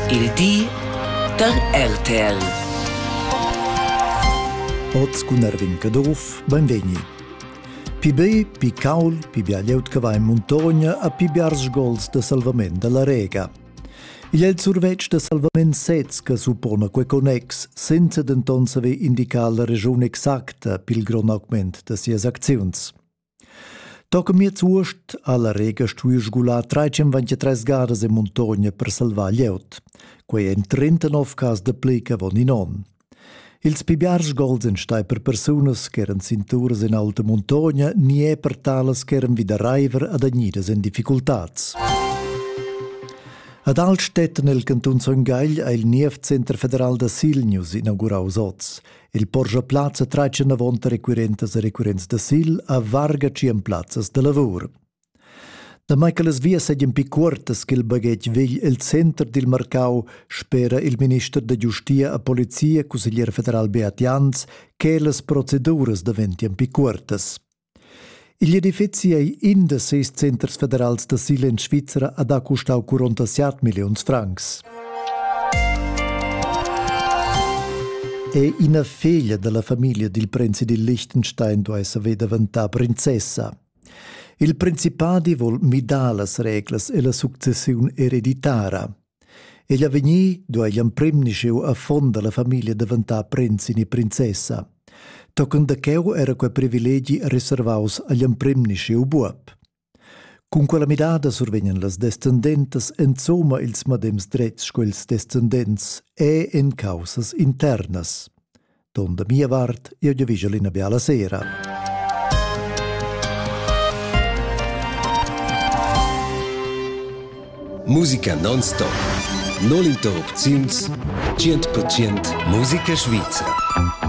Il di da RTL. Oz cun Erwin Caduff, benvegni. Pi be, pi caul, pi bia glieud che va in muntogna a pi biars gols de salvament dalla Rega. Igl è il survetsch de salvament sez che suppona quei connex, senza denton saver indicar la regiun exacta pil grond augment de sias acziuns. Toca miez uost ha la Rega stuiu sgular 323 gadas e muntogna per salvar glieud. Quei ein 39 cas da pli avon in onn. Ils pli biars gols ein stai per persunas che eran cinturas en alta muntogna ni è per talas che eran vida reiver adagnidas en difficultads. Ad Altstetten, el cantun Son Gagl, ha il Nievcenter federal da Silnius inaugurau oz. Il porscha plazza traitscha navonta requirentas e requirents da sil a varga tschien plazzas da lavur. Damai che las vias seigien pi cuortas ch'il baghetg vegl el center dil marcau, spera il minister da giustia a polizia, cusseglier federal Beat Jans, che las proceduras daventien pi cuortas. Igl edifeci ei in da ses centers federals d'asil en Svizra ad ha custau 47 milliuns francs. È ina feglia dalla famiglia dil prinzi dil Liechtenstein duai saver daventar princessa. Il principadi vol midar las reglas e la successiun ereditara. Egl avegnir duei l'emprim ni scheu affon dalla famiglia daventar prinz ni princessa. Tochen da cheu era quei privilegi reservaus agl emprim ni scheu buob. Cun quella midada survegnan las descendentas enzoma ils madems dretgs sco ils descendents e en caussas internas. Ton da mia vart, io vi vigel ina bella sera. Musica non-stop. Non interrupziuns, 100% musica svizzera.